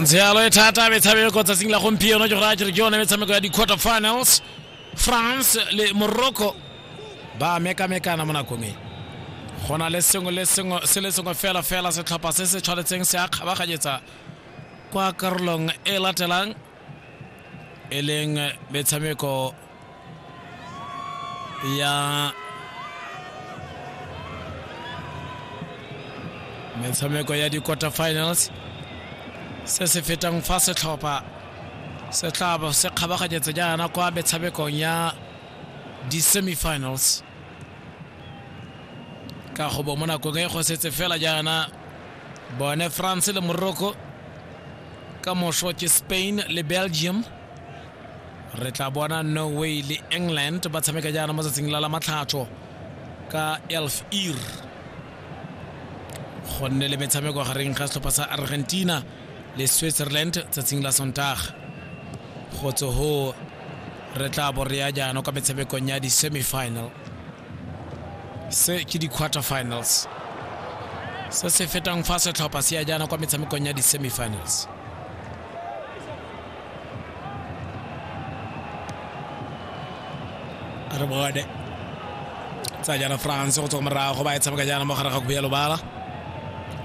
ntse yalo e thata metshameko ko tsatsing la gompieno ke go raya kere ke yone metshameko ya di-quarter finals france le morocco ba mekamekana mo nakong e go na le sengwe le sengwe se le sengwe fela fela setlhopha se se tshwanetseng se a kgabaganyetsa kwa karolong e latelang e leng metshameko ya metshameko ya di-quarter finals se se fetang fa setlhopha se tla bo se kgabaganyetsa jaana kwa metshamekong ya di-semifinals ka go bo mo nakong e go setse fela jaana bone france le morocco ka moso ke spain le belgium re tla bona norway le england ba tshameka jaana mo tsatsing la la matlhatso ka elf ear go nne le metshameko gareng ga setlhopha sa argentina le switzerland tsatsing la sontaga go tse go re tla bo re ya jaana kwa metshamekong ya di-semifinal se ke di-quarter finals se se fetang fa setlhopha se ya jaana kwa metshamekong ya di-semifinals re bone tsa jaana france go tswa morago ba e tshameka jaana mo gare ga kubu ya lobala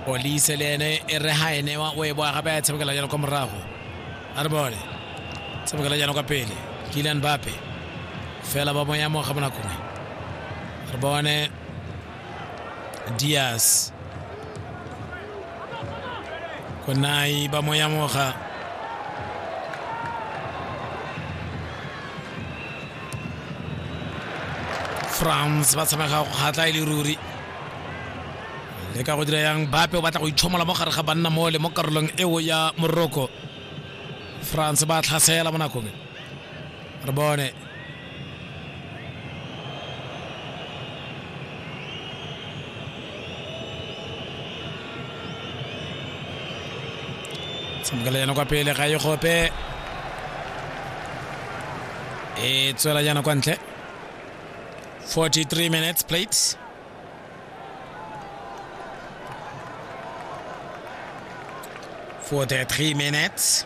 olise le ene e re ga e newa o e boa gape a e tshamekela jaana kwa morago a re bone tshamekela jaana kwa pele kilian bape fela ba moya mo ga bonakongwe re bone dias konai ba mo yamoga france ba tshamega go kgatla e le ruri le ka go dira yang bape o batla go itlhomola mo gare ga banna mole mo karolong eo ya moroko france ba tlhasela mo nakong Arbone. Tshamekela yana kwa pele ga e gope. E tswela yana kwa ntle. 43 minutes played. For the three minutes.